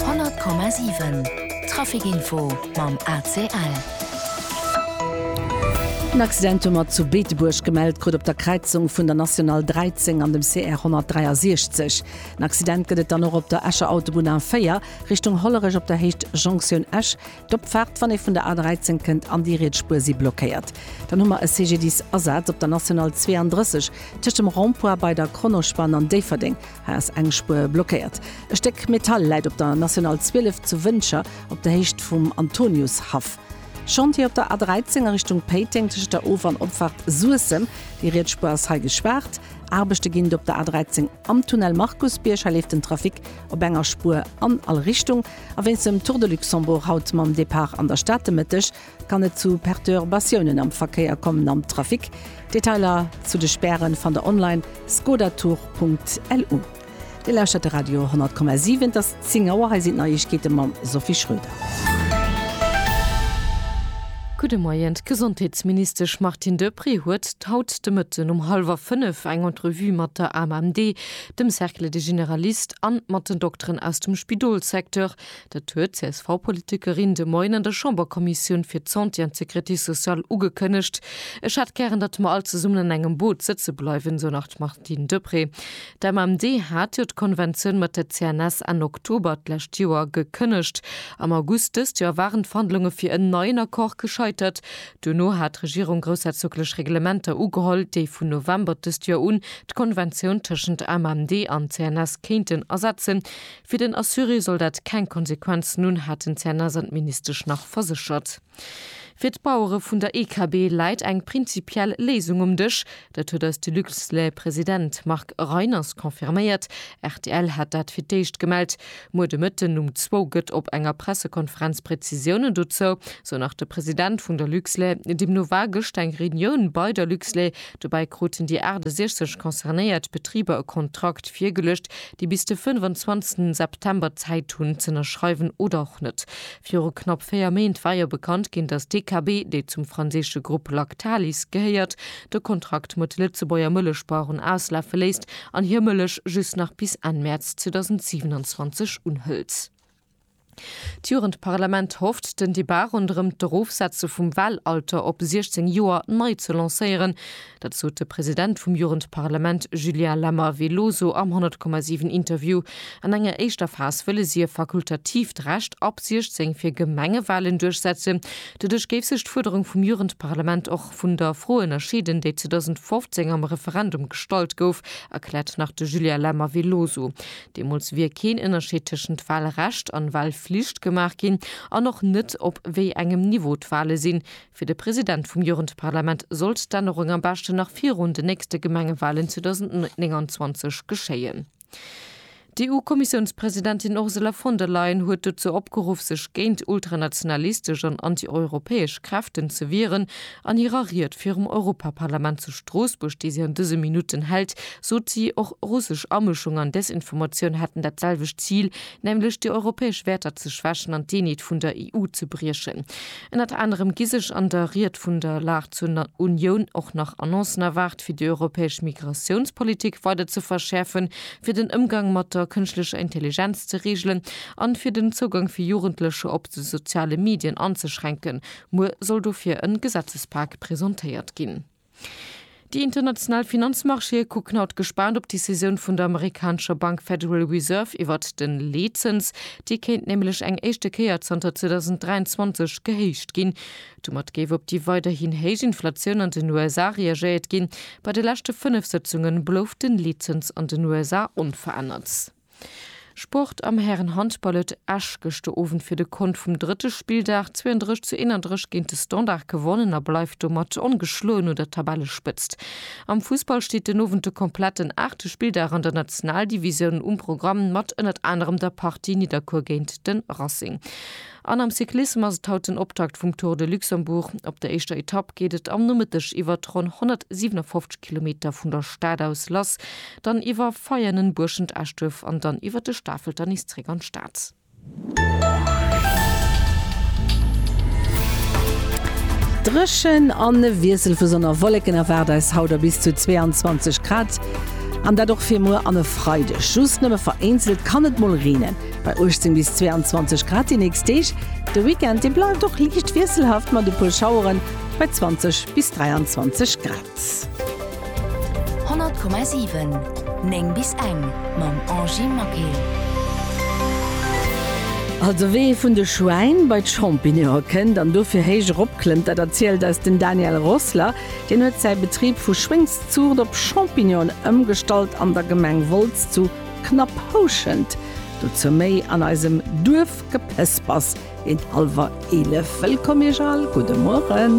100,7 Trafic-Info mam ACL. En Accident hu mer zu Beetebuerg gemellt krut op der Kräizung vun der National 13 an dem CR 163. En Accident gëtt et dann och op der Escher Autobunn A4 Richtung Hollerech op der Héicht Jonktioun Esch. D'Opfaart, wann ee vun der A13 kënnt, an déi riets Spuer si blockéiert. Dann hu mer e CGDIS-Asaz op der National 32 tëscht dem Rond-Point bei der Kronospann an Déifferdeng. Haas eng Spuer blockéiert. E Stéck Metall läit op der National 12 zu Wëncher op der Héicht vum Antoniushaff. Chantier op der A 13 a Richtung Péiteng tëschent der Of an Opfahrt Suessem. Déi riets Spuer ass hei gespaart. Aarbechte ginn op der A 13 am Tunnel Markusbierg. Hei leeft den Trafic op enger Spuer an all Richtung. A wéinst dem Tour de Luxembourg haut mam Depart an der Stad de Mëtteg, Kann et zu Perturbatiounen am Verkéier kommen am Trafic? Detailer zu de Späre fannt der online, skodatour.lu. Dir lauschtert de Radio 10,7, et ass 10 Auer, hei sinn d'Neiegkeete mam Sophie Schröder. Gudde Moien, D'Gesondheetsministesch Martine Deprez huet haut de Mëtten um hallwer fënnef eng Entrevue mat der AMMD, dem Cercle des généralistes an mat den Dokteren aus dem Spidolssecteur, Dat huet d'CSV-Politikerin de Moien an der Chamberkommissioun fir d'Santé an d'Sécurité sociale ugekënnegt. Ech hätt gären, datt mer all zesummen an engem Boot sëtze bleiwen, esou nach d'Martine Deprez. D'MMD hat jo d'Konventioun mat der CNS Enn Oktober d'lescht Joer gekënnegt. Am August dëst Joer waren d'Verhandlunge fir en neien Accord gescheitert. Duerno hat d'Regierung groussherzoglech Reglementer ugeholl, déi vun November dëst Joer un d'Konventioun tëschent MMD an CNS kéinten ersetzen. Fir den Assuré soll dat keng Konsequenzen hunn, hat den CNS an d'Ministesch nach verséchert. Fir d'Bauere vun der EKB läit eng prinzipiell Léisung um Dësch. Dat huet eis de Luxlait-President Marc Reiners confirméiert. Rtl hat dat fir d'éischt gemellt. Muer de Mëtten um zwou gëtt op enger Pressekonferenz Prezisiounen dozou, sou nach de President vun der Luxlait. Deemno war gëscht eng Reunioun bei der Luxlait, Dobäi kruten déi 68 concernéiert Betriber e Kontrakt virgeluecht, déi bis de 25 September Zäit hunn z'ënnerschreiwen oder och net. Viru knapp véier Méint war jo bekannt ginn, datt DKB, dee zum franséische Grupp Lactalis gehéiert, de Kontrakt mat de Lëtzebuerger Mëllechbaueren auslafe léisst an hir Mëllech just nach bis Enn Mäerz 2027 unhëlt. D'Jugendparlament hofft, den Debat ronderëm d'Erofsetze vum Wahlalter op 16 Joer nei ze lancéieren. Dat sot de President vum Jugendparlament Julien Lammer Veloso am 100,7 Interview. An enger éischter Phas wëlle si e fakultatiivt Recht ab 16 fir Gemengewahlen duerchsetzen. Doduerch géif sech d'Fuerderung vum Jugendparlament och vun der Fro ënnerscheeden, déi 2015 am Referendum gestallt gouf, erkläert nach de Julien Lammer Veloso. Deemools wier keen Ënnerscheed tëschent Walrecht an Walflicht gemaach ginn an och net, op wéi engem Niveau d'Wale sinn. Fir de President vum Jugendparlament sollt d'Ännerung am beschten nach virun den nächste Gemengewalen 2029 geschéien. D'EU-Kommissiounspresidentin Ursula von der Leyen huet dozou opgeruff, sech géint ultranationalistesch an anti-europäesch Kräften ze wieren, An hirer Ried virum Europaparlament zu Stroossbuerg, déi si an dëse Minutten hält, sot si, och russesch Amëschung an Desinformatioun hätten dat selwecht Zil, nämlech déi europäesch Wäerter ze schwächen an d'Eenheet vun der EU ze briechen. Ënnert anerem gi sech an der Ried vun der Lag zur Unioun och nach Annoncen erwaart, fir déi europäesch Migratiounspolitik weider ze verschäerfen, fir den Ëmgang mat der kënschtlecher Intelligenz ze reegelen an fir den Zougang fir Jugendlecher op de soziale Medien anzeschränken, Muer soll dofir en Gesetzespak presentéiert ginn. Déi international Finanzmarchéë kucken haut gespaant op d'Decisioun vun der amerikanescher Bank Federal Reserve iwwert den Leetzëns. Dee kéint nämlech eng éischte Kéier zanter 2023 gehéicht ginn. Domat géif op déi weiderhin héich Inflatioun an den USA reagéiert ginn. Bei de leschte fënnef Sëtzunge blouf den Leetzëns an den USA onverännert. Sport, Am Härenhandball huet Esch gëschter Owend fir de Kont vum drëtte Spilldag 32 zu 31 géint de Standard gewonnen a bleift domat ongeschloen un der Tabellespëtzt. Am Fussball steet den Owend de kompletten aachte Spilldag an der Nationaldivisioun um Programm mat ënnert anerem der Partie Nidderkuer géint de Racing. An am Cyclissem ass et haut den Optakt vum Tour de Luxembourg. Op der éischter Etapp geet et am Nomëtteg iwwert ronn 157 Kilometer vun der Stad aus lass, dann iwwer Veianen, Buerschent, Eschduerf an dann iwwert de Stafelter nees zréck an d'Stad. Dréchen an e Wiessel vu Sonn a Wolleken erwaart eis haut a bis zu 22 Grad. An dat och fir muer an e Freideg. Just nëmme vereenzelt kann et mol reenen. Bei 18 bis 22 Grad déi nächst Deeg. De Weekend, dee bleift och liicht wiesselhaft mat e puer Schaueren bei 20 bis 23 Grad. 100,7 9 bis eng mam Angie Maquet. Also wéi ee vun de Schwäin bei d'Champignone kënnt an dofir héich erop klëmmt, dat erzielt eis den Daniel Rossler. Deen huet säi Betrib vu Schwéngszuucht op Champignonen ëmgestallt an der Gemeng Wolz zu Knapp houschend, dozou méi an eisem Duerfgepëspers géint hallwer 11. Wëllkomm Iech all, gudde Mueren.